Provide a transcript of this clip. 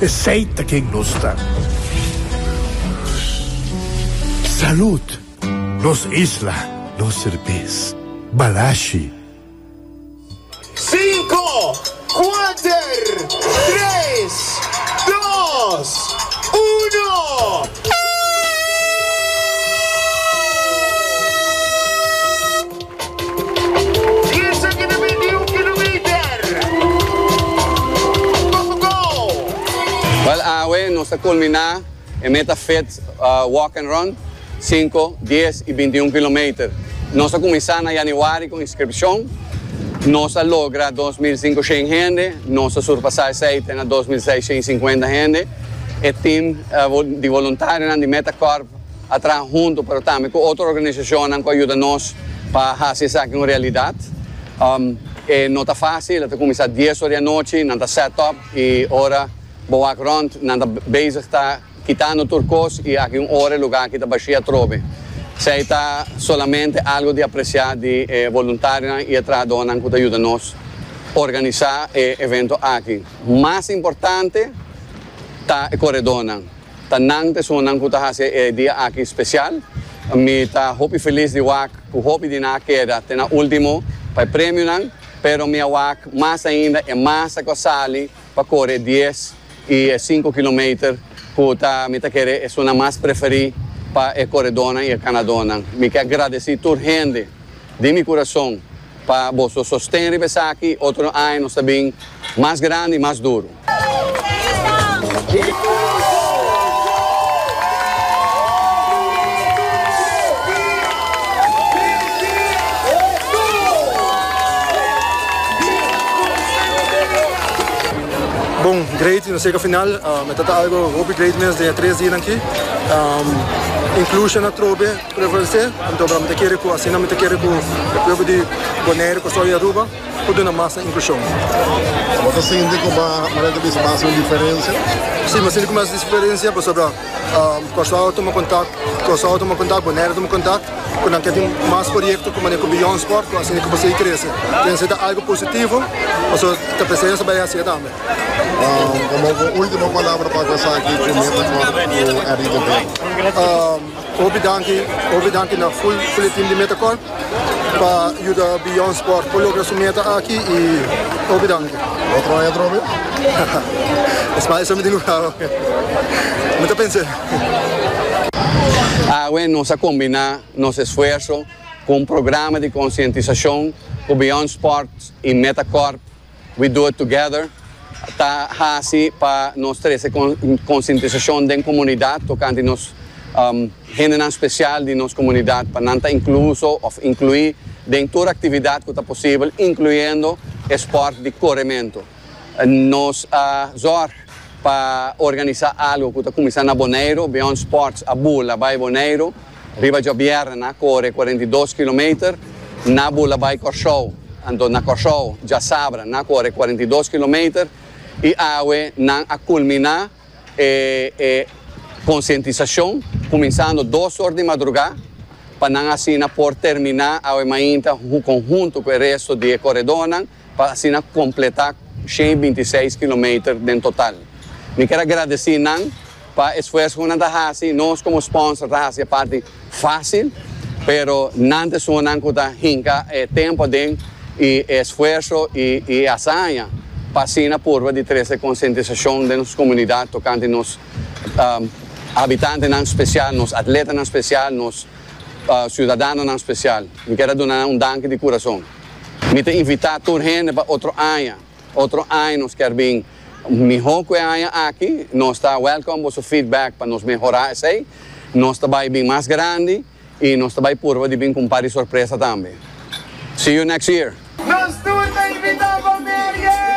Esey ta ken nos ta. Salud! Nos isla, nos serbes. Balashi! Sinku, kuater, tres, dos, uno. Wel awe nos ta kulminá e meta fit walk and run, sinku, dies i binti un kilometer. Nos a kuminsá na yanüari ku inskripshon. Nos a logra dos mil sinku shen hende, nos a surpasá esei te na dos mil seis shen i sinkuenta hende. E tim di voluntarionan di Meta Corp. a traha huntu pero tambe ku otro organisacionnan ku a yuda nos pa haci esaki un realidad. E no ta facil, a ta cuminsa dies ora di anochi, nan ta set up y ora bo wak rond nan ta bezig ta kitando tur cos y aki un ora e lugar aki ta bashi atrobe. Esey ta solamente algo di aprecia di e voluntarionan y e trahadornan ku ta yuda nos organisa e evento aki. Mas importante ta e corredornan. Ta nan personanan cu ta haci e dia aki special. Mi ta hopi feliz di wak cu hopi di nan a keda te na ultimo pa e premionan, pero mi a wak mas ainda e masa cu a sali pa core e dies y e cinco kilometer cu ta mi ta kere esunnan mas preferi pa e coredornan y e ganadornan. Mi ke a gradeci tur hende di mi curason pa boso sosten riba esaki y otro aña nos ta bin mas grandi y mas duro. Bon, great y nos llega final. Um, het algo hopi great mens de tres dias aquí. Um, inclusion na trobe, preference. Então, vamos ter que así, vamos ter que o povo de Bonaire, Costa e Aruba. Cu duna masa inclusion. Bo ta sinti cu bo Maria ta bisa bo a haci un diferencia? Si, m'ha sinti cu mi a haci diferencia pasobra cos awe tuma contact, cos awe tuma contact, Bonaire tuma contact cu nan cu a tin mas proyecto cu manera cu Beyond Sport cu a siña cu por sigui crece. Pensa esta algo positivo pasobra ta presencia bay hacia tambe. Como bo ultimo palabra pa cu esaki cu mi a ta cor cu Enrique Vera? Hopi danki, hopi danki na full full team di Metacorp pa yuda Beyond Sport por logra su meta aki y hopi danki. Otro aña atrò be? Es mas esei mi tin lugá awe. Mi ta pensa esei. Awe nos a kombiná nos esfuerso ku un programa di konsientisashon ku Beyond Sport i Metacorp We Do It Together ta hasi pa nos trese konsientisashon den komunidat tokante nos hendenan spesial di nos komunidat pa nan ta inkluso òf inkluí den tur aktividat ku ta posibel, inkluyendo e spòrt di korementu. Nos a zòrg pa organisá algu ku ta kuminsá na Boneiru, Beyond Sports a bula bai Boneiru. Riba djobièrnè na kore cuarenta i dos kilometer na bula bai Kòrsou. Anto na Kòrsou djasabra na kore cuarenta i dos kilometer i awe nan a kulminá e konsientisashon kuminsando dos or di madrugá pa nan asina por terminá awe mainta kon huntu ku e resto di e koredónan. pa asina kompletá shen binti seis kilometer den total. Mi ker a gradesí nan pa e esfuerso ku nan ta hasi, nos komo sponsor ta hasi e parti fásil, pero nan ta esungunan ku ta hinka e tempu aden i e esfuerso i e asaña pa asina purba di trese konsientisashon den nos komunidat tokante nos habitantenan spesial, nos atletanan spesial, nos siudadanonan spesial. Mi ker a duna nan un danki di kurason. Mi ta invitá tur hende pa otro aña. Otro aña nos kier bin mihó ku e aña aki. Nos ta wèlkòm boso feedback pa nos mehorá esei. Nos ta bai bin mas grandi i nos ta bai purba di bin ku un par di sorpresa tambe. See you next year! Nos tur ta invitá bo merie!